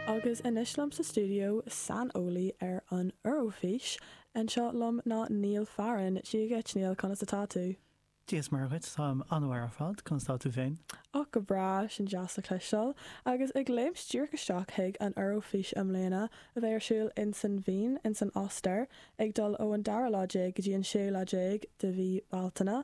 Agus anois liom sa stiúideo, saineolaí ar an Eoraifís anseo liom ná Neil Farren. Dia dhuit, Neil, conas atá tú? Dia is Muire dhuit, táim an-mhaith ar fad, conas atá tú féin? Och, go breá, sin deas le cloisteáil. Agus ag léimt díreach isteach chuig an Eoraifís i mbliana, a bheidh ar siúl insan Vín, insan Ostair, ag dul ó an dara lá déag go dtí an séú lá déag de mhí Bealtaine.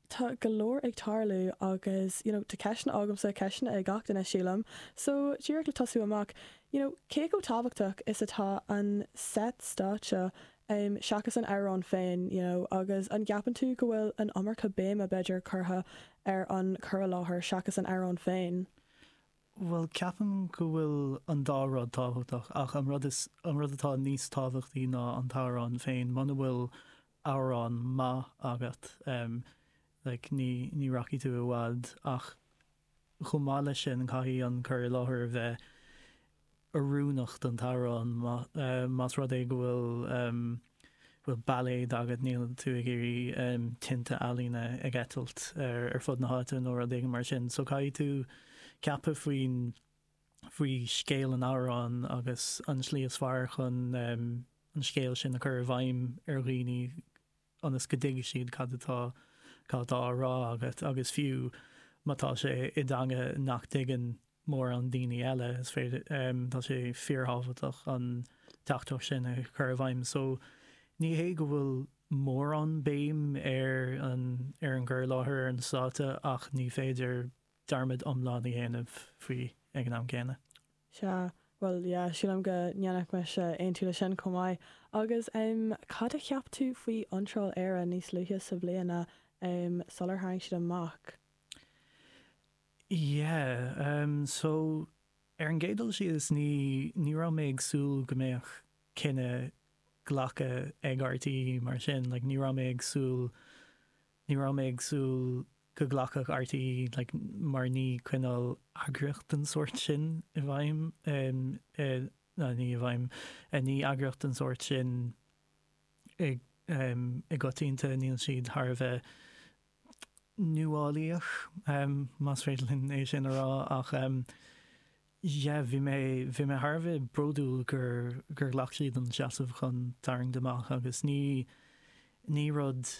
tá go leor ag tarlú agus you know tá ceisteanna agamsa, ceisteanna ag gach duine sílim, so díreach le tosú amach, you know cé chomh tábhachtach is atá an set stáitse em seachas an amhrán féin you know agus an gceapann tú go bhfuil an iomarca béime b'fhéidir curtha ar an cur i láthair seachas an amhrán féin? Bhuel ceapaim go bhfuil an dá rud tábhachtach ach an rud is an rud atá níos tábhachtaí ná an t-amhrán féin muna bhfuil amhrán maith agat like ní ní rachaidh tú i bhfad ach chomh maith leis sin caithfidh an cur i láthair a bheith oiriúnach don t-amhrán más rud é go bhfuil bhfuil bailéad agat níl tú ag iarraidh tinte ealaíne ag eitilt ar fud na háite nó rud éigin mar sin so caithfidh tú ceapadh faoin faoi scéal an amhráin agus an tslí is fearr chun an scéal sin a chur i bhfeidhm ar dhaoine ionas go dtuigfidh siad cad atá cad atá á rá agat agus fiú má tá sé i dteanga nach dtuigeann mórán daoine eile, is féidir, tá sé fíorthábhachtach an teachtaireacht sin a chur i bhfeidhm. So ní hé go bhfuil mórán béim ar an ar an gcur i láthair ar an stáitse ach ní féidir, dearmad iomlán a dhéanamh faoi ag an am gcéanna. Sea, bhuel, yeah, sílim go ndéanfainnse aontú le sin chomh maith. Agus ehm, cad a cheap tú faoi iontráil Éire níos luaithe sa bhliain, ehm, sular tharraing siad amach? Yeah, ehm, so, ar an gcéad dul síos, ní, ní raibh mé ag súil go mbeadh cinneadh glactha ag RTÉ mar sin, like, ní raibh mé ag súil, ní raibh mé ag súil, go nglacfadh RTÉ like mar ní coinneáil eagraíocht den sórt sin i bhfeidhm ná ní i bhfeidhm ní eagraíocht den sórt sin i i gcoitianta níl siad thar a bheith nuálaíoch, más féidir linn é sin a rá, ach yeah bhí mé bhí mé thar a bheith bródúil gur gur ghlac siad an seasamh chun tarraingt amach agus ní ní rud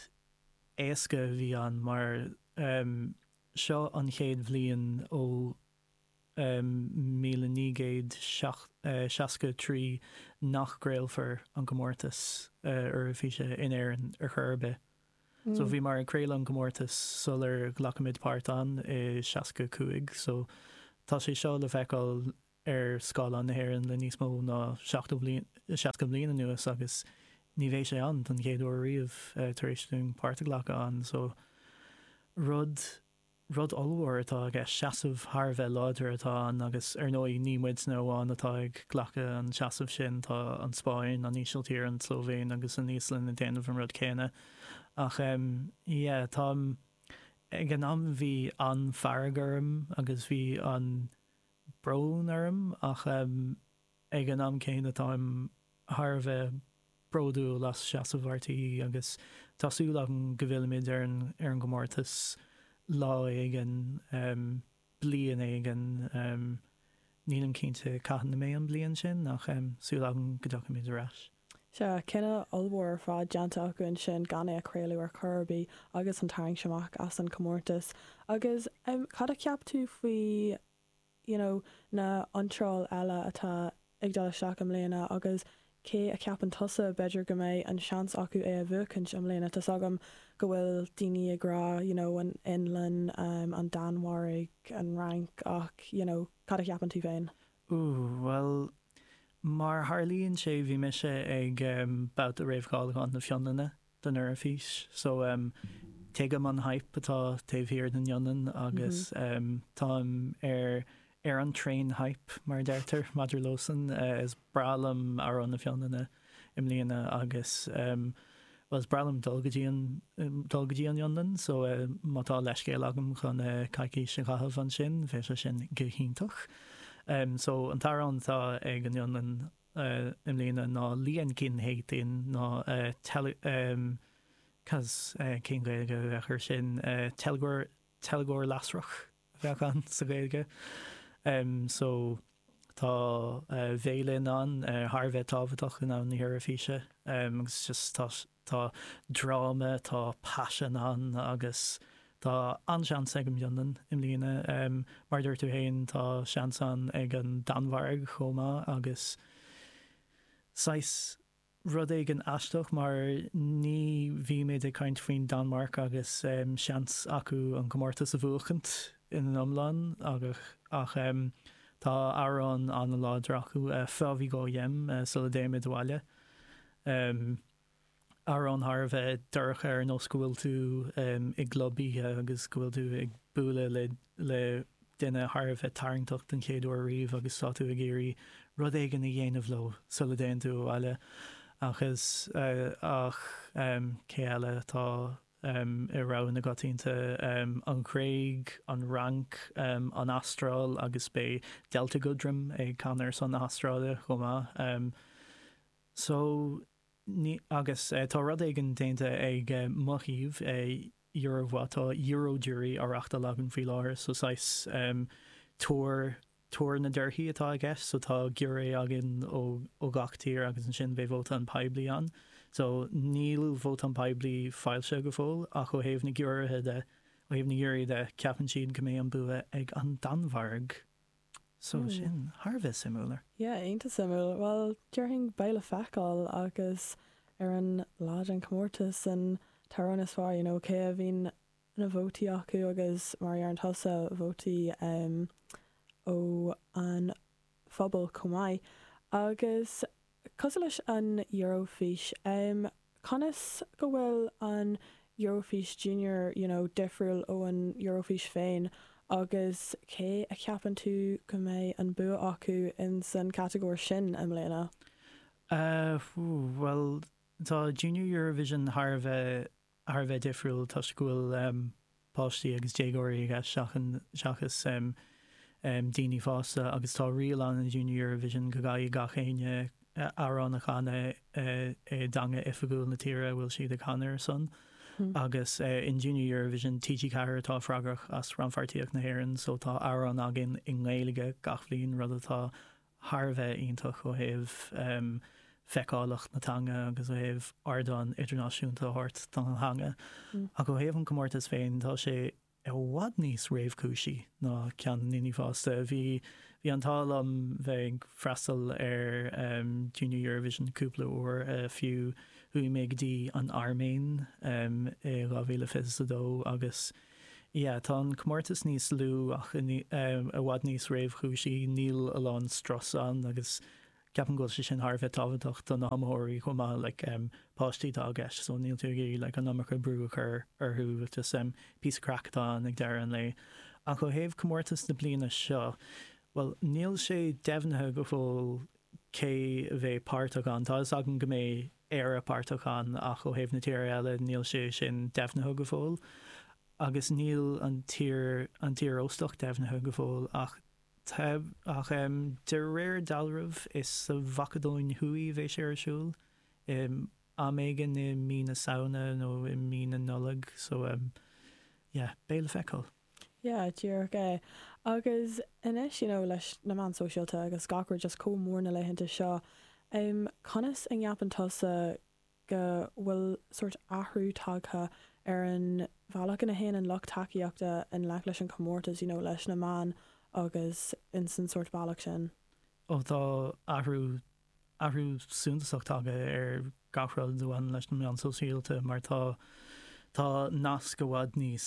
éasca a bhí ann mar seo an chéad bhliain ó 1963 nach gcraolfar an comórtas Eoraifíse in Éirinn ar chor ar bith. So bhíomar ag craoladh an comórtas sular ghlacfaimid páirt ann i 65, so tá sé seo le feiceáil ar scáileán na hÉireann le níos mó ná seachtó bliain, seasca bliain anuas agus ní bheidh sé ann don chéad uair riamh tar éis dúinn páirt a ghlacadh ann. So, rud, rud ollmhór atá i gceist, seasamh thar a bheith láidir atá ann agus ar ndóigh ní muidne amháin atá ag glacadh an seasamh sin, tá an Spáinn, an Ísiltír, an tSlóivéin agus an Íoslainn ag déanamh an rud céanna. Ach em, yeah, tá, ag an am bhí an-fhearg orm agus bhí an, brón orm ach ag an am céanna táim thar a bheith bródúil as seasamh RTÉ agus tá súil agam go bhfillfimid ar an gcomórtas lá éigin, bliain éigin, nílim cinnte cathain a mbeidh an bliain sin ach súil agam go dtiocfaimid ar ais. Sea, cinneadh ollmhór ar fad déanta acu ansin gan é a chraoladh ar chor ar bith agus an tarraingt amach as an chomórtas. Agus cad a cheap tú faoi you know na hiontráil eile atá ag dul isteach i mbliana agus cé a cheapann tusa b'fhéidir go mbeidh an seans acu é a bhuachaint i mbliana? Tá's agam go bhfuil daoine ag rá you know an Fhionlainn, an Danmhairg, an Fhrainc ach you know cad a cheapann tú féin? Ooh, bhuel, mar a tharlaíonn sé bhí mise ag babhta réamhcháiliúcháin na Fionlainne don Eoraifís, so tuigim an hype atá taobh thiar den Fhionlainn agus táim ar ar an traein hype, mar a deirtear, maidir leosan. Is breá liom amhrán na Fionlainne. i mbliana agus, bhuel, is breá liom dul go dtí an, dul go dtí an Fhionlainn so má tá leithscéal agam chun coicís a chaitheamh ansin bheadh sé sin go hiontach. So an t-amhrán atá ag an Fhionlainn i mbliana ná Liekinheitin ná tel, cos, cén Ghaeilge a bheadh air sin, teilgeoir, teilgeoir lasrach? bheadh ann sa Ghaeilge. So, tá veidhlín ann thar a bheith tábhachtach i ndomhan na hEoraifíse agus just tá, tá dráma, tá paisean ann agus tá an-seans ag an bhFionlainn i mbliana. Mar a dúirt tú féin, tá seans ann ag an Danmhairg chomh maith agus saghas. rud éigin aisteach mar ní bhímid ag caint faoin Danmhairc agus seans acu an comórtas a bhuachaint ina n-iomlán ach tá amhrán an-láidir acu, Før vi går hjem, Sula dtéimid abhaile, amhrán thar a bheith dorcha ar nós go bhfuil tú i gclub oíche agus go bhfuil tú ag bualadh le duine thar a bheith tarraingteach den chéad uair riamh agus tá tú ag iarraidh rud éigin a dhéanamh leo sula dtéann tú abhaile ach is ach cé eile atá i rogha na gcoitianta? An Ghréig, an Fhrainc, an Astráil agus beidh Delta Goodrem ag canadh ar son na hAstráile chomh maith. So. Agus tá rud éigin déanta ag mo shuíomh, Eurovoix, tá Eurojury á reachtáil againn faoi láthair, so saghas tuar, tuar na dtorthaí atá i gceist, so tá giúiré againn ó gach tír agus ansin beidh vóta an phobail ann. So níl vóta an phobail foilsithe go fóill ach ó thaobh na giúiréithe de, ó thaobh na ngiúirí de, ceapann siad go mbeidh an bua ag an Danmhairg. So sin thar a bheith suimiúil. Yeah, iontach suimiúil. Bhuel, déarfainn beidh le feiceáil agus ar an lá den chomórtas an t-amhrán is fearr, you know, cé a bhíonn na vótaí acu agus mar a deireann tusa, vótaí ó an phobal chomh maith agus Cosúil leis an Eurofís. Conas go bhfuil an Eurofís Junior, you know, difriúil ó an Eurofís féin agus cé a cheapann tú go mbeidh an bua acu in san catagóir sin i mbliana? Ahh, bhuel, tá Junior Eurovision thar a bheith thar a bheith difriúil toisc go bhfuil páistí agus déagóirí i gceist seachas daoine fásta agus tá riail ann i Junior Eurovision go gcaithfidh gach éinne amhrán a chanadh i dteanga oifigiúil na tíre a bhfuil siad ag canadh ar a son agus in Junior Eurovision, TG4 atá freagrach as rannpháirtíocht na hÉireann so tá amhrán againn i nGaeilge gach bhliain, rud atá. thar a bheith iontach ó thaobh feiceálacht na teanga agus ó thaobh ardán idirnáisiúnta a thabhairt don teanga. Ach ó thaobh an comórtais féin, tá sé i bhfad níos réamhchúisí ná ceann na ndaoine fásta. Bhí an t-ádh liom bheith ag freastal ar Junior Eurovision cúpla uair fiú. Chuaigh mé go dtí an Airméin i 2022 agus Yeah, tá an comórtas níos lú ach i bhfad níos réchúisí, níl a lán strus ann agus ceapaim go bhfuil sé sin thar a bheith tábhachtach do na hiomaitheoirí chomh maith, like páistí atá i gceist so níl tú ag iarraidh like an iomarca brú a chur orthu, just píosa craic atá ann ag deireadh an lae. Ach ó thaobh comórtas na bliana seo, bhuel níl sé deimhnithe go fóill cé a bheidh páirteach ann, tá fhios agam go mbeidh, Éire páirteach ann ach ó thaobh na tíre eile níl sé sin deimhnithe go fóill agus níl an tír, an tír óstach deimhnithe go fóill ach tá, ach em de réir dealraimh is sa Mhacadóin Thuaidh a bheidh sé ar siúl, em am éigin i mí na Samhna nó i mí na Nollag so em yeah beidh sé le feiceáil. Yeah, díreach é. Agus anois, you know, leis na meáin sóisialta agus gach rud just chomh mór na laethanta seo, em, conas a gceapann tusa go bhfuil sórt athrú tagtha ar an bhealach ina théann an lucht tacaíochta i ngleic leis an chomórtas, you know, leis na meáin agus insan sórt bealach sin? Oh, tá athrú athrú suntasach tagtha ar gach rud a bhaineann leis na meáin shóisialta mar tá tá nasc i bhfad níos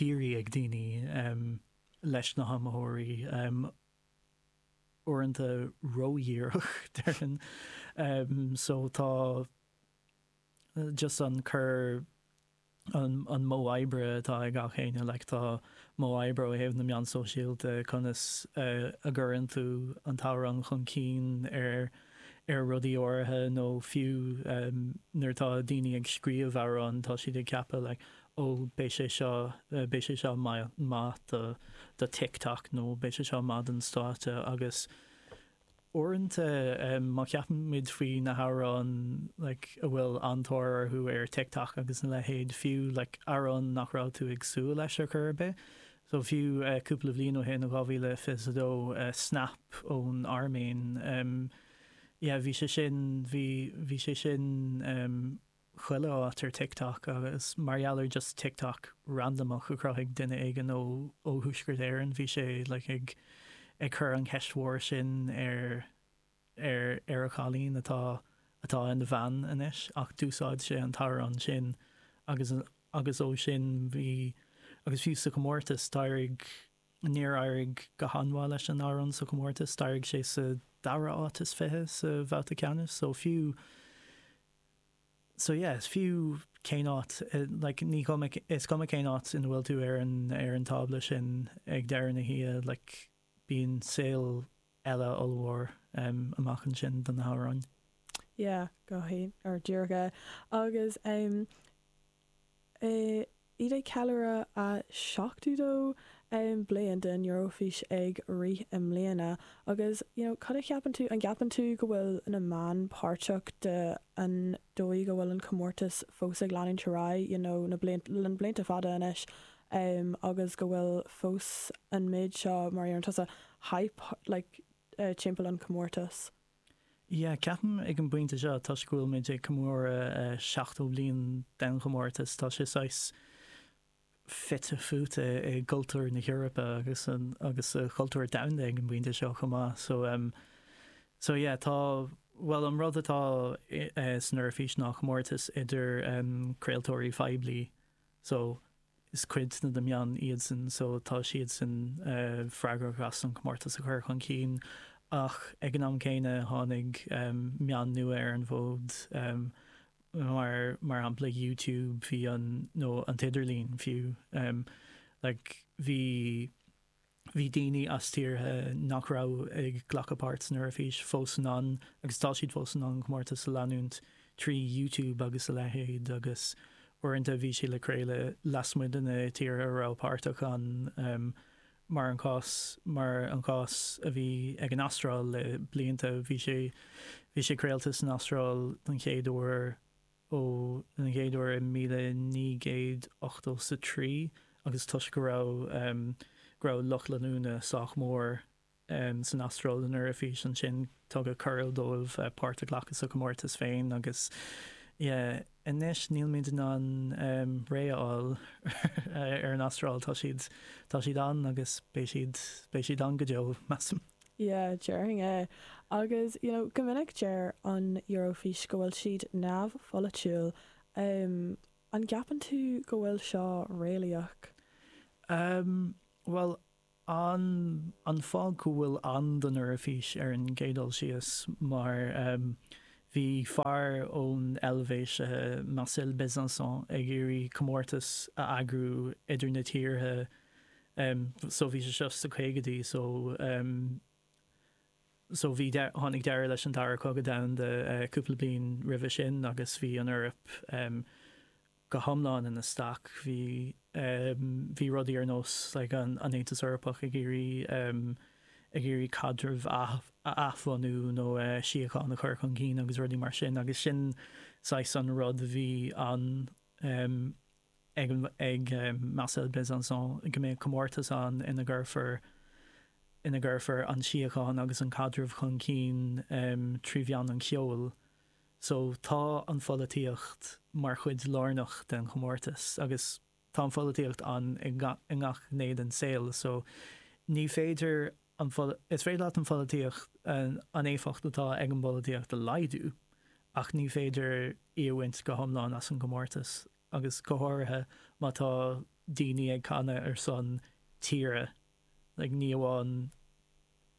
dírí ag daoine leis na hiomaitheoirí, uaireanta ródhíreach déarfainn, só tá just an cur. an modh oibre atá ag gach éinne, like tá modh oibre ó thaobh na meán sóisialta, conas a gcuireann tú an t-amhrán chun cinn ar ar rudaí áirithe nó fiú nuair atá daoine ag scríobh amhrán tá siad ag ceapadh like oh beidh sé seo, beidh sé seo maith do TikTok nó beidh sé seo maith don stáitse agus. Uaireanta má cheapaimid faoi na hamhráin like a bhfuil an-tóir orthu ar TikTok agus a leithéid, fiú like amhrán nach raibh tú ag súil leis ar chor ar bith, so fiú cúpla bliain ó shin, 2022, Snap ón Airméin, yeah bhí sé sin, bhí sé sin. chuile áit ar TikTok agus mar gheall ar just TikTok randamach a chruthaigh duine éigin ó ó Thuaisceart Éireann bhí sé like ag ag cur an cheist mhór sin ar ar ar a chailín atá atá ina bhean anois ach d'úsáid sé an t-amhrán sin agus agus ó sin bhí agus fiú sa chomórtas d'éirigh níor éirigh go han-mhaith leis an amhrán sa chomórtas d'éirigh sé sa dara áit is fiche sa bhabhta ceannais so fiú So yeah, so fiú cén áit, like, ní cuma, is cuma cén áit ina bhfuil tú ar an, ar an tábla sin ag deireadh na hoíche, like, bíonn saol eile ollmhór amach ansin do na hamhráin. Yeah, go, ar, díreach é. Agus, Tá siad ag ceiliúradh a 72 bliain den Eurofís ag rith i mbliana agus you know cad a cheapann tú? An gceapann tú go bhfuil na meáin páirteach de an dóigh a bhfuil an comórtas fós ag leanúint ar aghaidh you know na na blianta fada anois agus go bhfuil fós an méid seo mar a déarann tusa hype like timpeall an chomórtais. Yeah, ceapaim ag an bpointe seo, toisc go bhfuil muid ag comóradh 70 bliain den chomórtas, tá sé saghas fite fuaite i gcultúr na hEorpa agus agus sa chultúr domhanda ag an bpointe seo chomh maith. So em so yeah tá bhuel an rud atá san Eoraifís ná comórtas idir em craoltóirí poiblí so is cuid de na meáin iadsan so tá siadsan freagrach as an comórtas a chur chun cinn ach ag an am céanna tháinig meáin nua ar an bhfód mar mar shampla YouTube bhí an nó an t-idirlíon fiú like bhí Bhí daoine as tíortha nach raibh ag glacadh páirt san Eoraifís fós in ann, agus tá siad fós in ann, an comórtas a leanúint trí YouTube agus a leithéid, agus uaireanta bhí sé le craoladh lasmuigh de na tíortha a raibh páirteach ann, mar an cás mar an cás a bhí ag an Astráil le blianta, bhí sé bhí sé craolta san Astráil don chéad uair. don chéad uair i míle naoi gcéad ochtó 's a trí agus toisc go raibh, go raibh lucht leanúna sách mór san Astráil don Eoraifís ansin tugadh cuireadh dóibh páirt a ghlacadh sa chomórtas féin agus yeah anois nílimid in ann réidh a fháil ar an Astráil, tá siad, tá siad ann agus beidh siad, beidh siad ann go deo measaim. Yeah, déarfainn é. Agus, you know, go minic deir an Eurofís go bhfuil siad neamhpholaitiúil. Em, an gceapann tú go bhfuil seo réalaíoch? Em, bhuel, an, an fáth go bhfuil ann don Eoraifís ar an gcéad dul síos, mar, em, bhí fear ón Eilvéis, eh, Marcel Bezençon ag iarraidh comórtas a eagrú idir na tírithe, em so bhí sé seo sna caogaidí so em so bhí dea tháinig deireadh leis an dara cogadh domhanda eh cúpla bliain roimhe sin agus bhí an Eoraip em go hiomlán ina staic bhí em bhí rudaí ar nós like an an Aontas Eorpach ag iarraidh em ag iarraidh caidreamh a a athbhunú nó eh síocháin a chur chun cinn agus rudaí mar sin agus sin saghas an rud a bhí an ag Marcel Bezençon go mbeidh comórtas ann ina gcuirfear ina gcuirfear an síocháin agus an caidreamh chun cinn trí mheán an cheoil so tá an pholaitíocht mar chuid lárnach den chomórtas agus tá an pholaitíocht ann i ngach gné den saol so ní féidir Is féidir leat an pholaitíocht, an éifeacht atá ag an bpolaitíocht a laghdú ach ní féidir í a bhaint go hiomlán as an gcomórtas agus go háirithe má tá daoine ag canadh ar son tíre, like ní amháin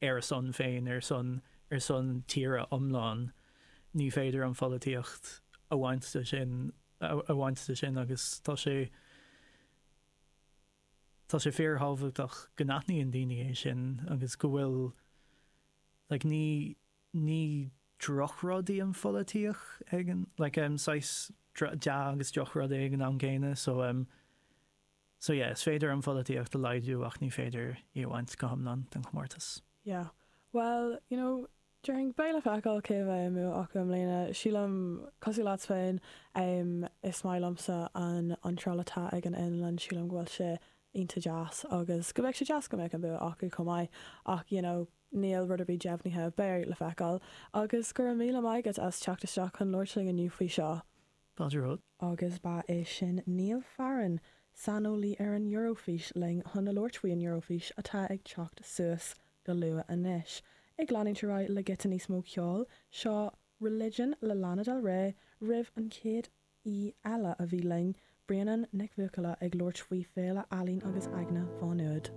ar a son féin, ar son, ar son tíre iomlán. Ní féidir an pholaitíocht a bhaint de sin, a bhaint de sin agus tá sé. Tá sé fíorthábhachtach go n-aithníonn daoine é sin agus go bhfuil like ní, ní drochrud í an pholaitíocht ach tá like em saghas dea agus drochrud é ag an am gcéanna so em so yeah is féidir an pholaitíocht a laghdú ach ní féidir í a bhaint go hiomlán den chomórtas. Yeah. Bhuel, you know, Déarfainn, beidh le feiceáil cé mbeidh an bua acu i mbliana. Sílim, cosúil leat féin, is maith liomsa an iontráil atá ag an Fhionlainn, sílim go bhfuil sé iontach deas agus go mbeadh sé deas go mbeadh an bua acu chomh maith ach you know, níl rud ar bith deimhnithe. Beidh le feiceáil. Agus go raibh míle maith agat as teacht isteach chun labhairt linn inniu faoi seo. Agus ba é sin Niall Farren, saineolaí ar an Eurofís linn chun labhairt faoi an Eurofís atá ag teacht suas go luath anois. Ag leanúint ar aghaidh le giota níos mó ceoil, seo Religion le Lana Del Rey roimh an chéad aoi eile a bhí linn, Bréanann Nic Bhuachalla ag labhairt faoi Féile Ealaín agus Aigne Mhá Nuad.